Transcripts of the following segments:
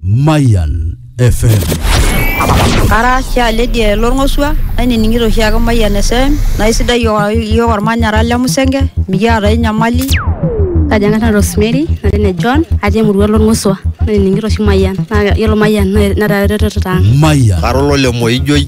Mayan FM. Ara oshi aledi lorng'osua nainining'ito oshi ake Mayian FM naa isidai iyiook iyiook ormanyara le Musenge mikiata ae nyamali. Kaji ang'as nanu Rosemary natii ene John atii emurua olong'osua nainining'ito oshi Mayian naa yiolo Mayian netaa eretoto ang'. Mayan. Ara olole Moijoi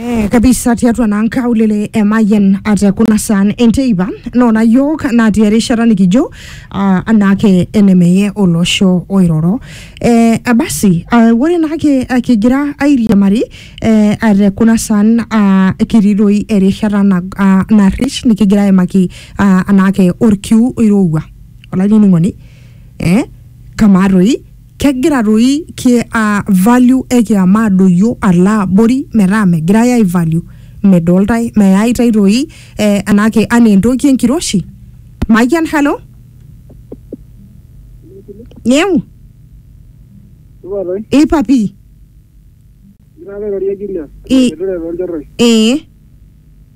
Eh, kabisa tiatua naa nkaulele emayian ate kuna saan enteipa noona yiok natii erishata nikijo ah, anaake enemeye olosho oiroro eh, abasi ah, ore naake ah, kigira airiamari eh, ate kuna saan ah, kitii doi erishata na, ah, narrish nikigira aimaki ah, anaake orkiu oirowua olainining'oni eh, kamaa toi Kegira doi ki uh, value e kiama adoyio alo abori metaa megirae ai value medoltae meyaitae doi eh, enake anaa entoki enkiroshi mayian hello nyeu Supa toi. ipa pii Igira apa airorie Julius. Ii. Etureto olchorroi. ee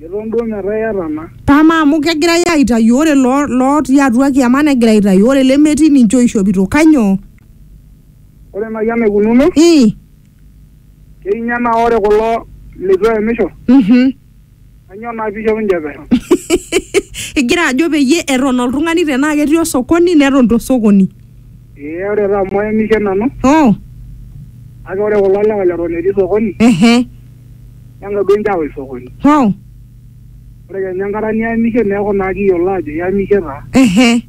Eton duo metaa iyata ena. Amaa amu kegirai aaitayu ore lootii atua kiama negira aitayu ore lemetii ninche ooishopito kanyoo? Ore naaji enaikununo. Ii. Keinye naa ore kulo leitu eemisho. Uhum. Kanyoo naa pee eishop ninche pesho? Igira ajo peyie eton oltung'ani tenaa ketii osokoni neton to sokoni. Ee ore taa amu aemishe nanu. Oo. Kake ore kulo lewa leton etii sokoni. Ehe. neng'odu enchawa isokoni. Wow. Ore kenya enkata niyamishe neeku naa kiyiolo ajo iyamishe taa. Ehe.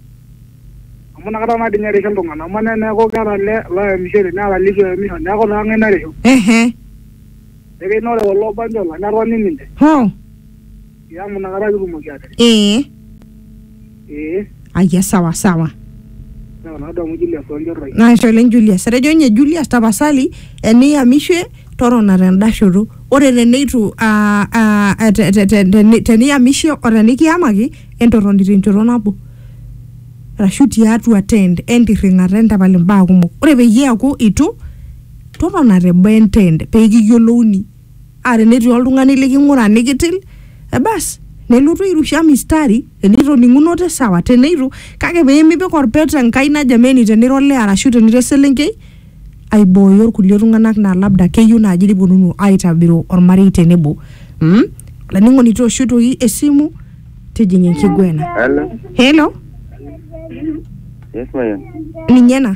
Amu inakata naa dii ninye erishu iltung'ana. Amaa naa eneeku keeta ele loyamishore neeta litu eyamisho neeku naa kang'ae narishu? Ehe. Ekeji naa ore kulo banjola netoni ninche. Wow. Ya amu nakata kitumoki atere. ee Ee. ayia sawa sawa Sawa nadamu Julius Wanjorroi. naisho oleng Julius etejo ninye Julius tapasali eniyamishe torona tenda shoto ore teneitu aa- aa- aa- te- te- te- teni- teniyamishe o tenikiyamaki entorroni tenchoto nabo arashu tiatua tent entirring'ata entapal imbaa kumok ore peyie eeku itu totona teboo entent pee kiyiolouni aa tenetii oltung'ani liking'ura nikitil ebas nelotu airusha mistari enitoning'unote sawa teneitu kake peemipik orpet enkai ina jameni tenira olee arashu tenira eselenkei aibooyo irkulie tung'anak naa labda keyieu naaji niponunu aitabiru ormarei tenebo mm? olainining'oni toosho toi esimu tijing'a enkiguena Hello. helo Yes, Mayan. ninye ena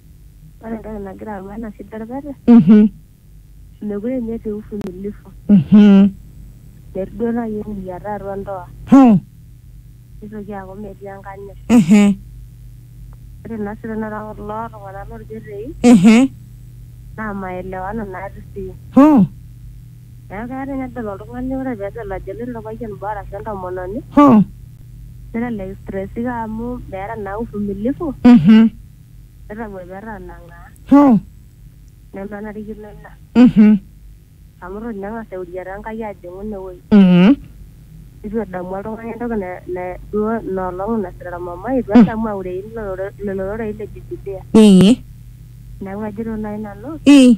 Ore entoki nagira ayau ena shida orpete, Mhm. mekure ninye etii uvumilivu. Mhm. Metii duo naaji eng'iriata atua ndoa. Hoo. Nitoki aaku metii enkanyit. Ehe. Ore naa sii tenakata kulo tung'anak lorpetei, Ehe. naa maelewano natii sii. Hoo. Neeku keya ninye nedol oltung'ani ore pedol ajo eloito orpayian boo arashu entomononi, Hoo. nelelek istresika amu meeta naa uvumilivu. Mhm. Netang'uepa etanang'aa Hoo. nemenarikino ina. Mhm. Amu eton ninye eng'as euriata Enkai ajing'u ine wueji. Mhm. Eitu edamu oltung'ani entoki na, na duo ina olong nasira olmumai, eitu edamu aurei ilo rore- lelo rorei le Bibilia. Ee. Neaku ajito naaji nanu, Ee.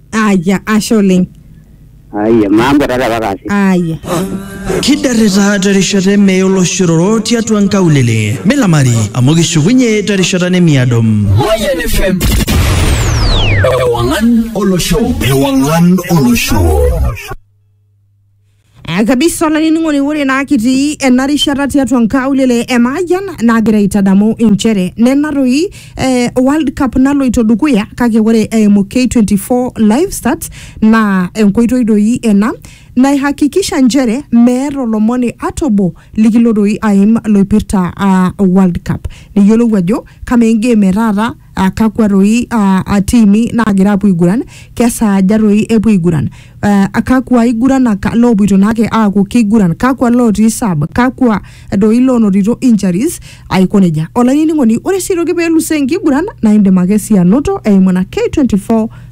aya ashe oleng Aiye, maambo tata pakasi. aya Kidarrita terishata emee oloshororo tiatua nkaulele. Milamari amu kishukunye terishata nemiado. Mayan FM. Ewangan Olosho. Ewangan Olosho. Eh, kabisa olainining'oni ore naa kitii ena rishata tiatua nkaulele e Maayian naagira aitadamu inchere nena toi eh, World Cup naloito dukuya kake ore eimu K24 live start naa enkoitoi doi ena naihakikisha nchere meeta olomoni ata obo likilo doi aim loipirta ah, World Cup niyiolou ajo kamaa engame e taata ah, kakwa toi ah, ah, tiimi naagira apuo aiguran kesaaja toi epuo aiguran eh, kakwa aiguranak loopoito naake aaku keiguran kakwa lootii sub kakwa doi loonotito injuries aiko nejia olainining'oni ore sii toki peelusoo enkiguran naa indim ake sii anoto eimu ena K24